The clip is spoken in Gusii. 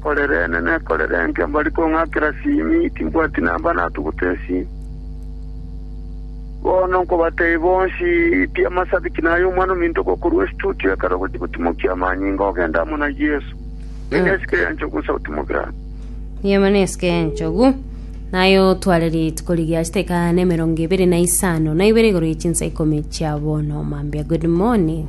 Korerene nekorerenge mbari kong'akera simi, timbwati namba natuguta esimi. Bono nkobatebi bonsi, tia amasabiki na ay'omwana ominto gokorwa estudio ekero ogochia gotimokia amanyinga ogende amo na Yeso. Nigo nesike ya nchogu nsa gotimokera amo. Nigo nesike ya nchogu naye otware rituko rigia chiteka na emerongo ebere na isano na ibere igoro ye chinsa ikomi chia bono mambia good morning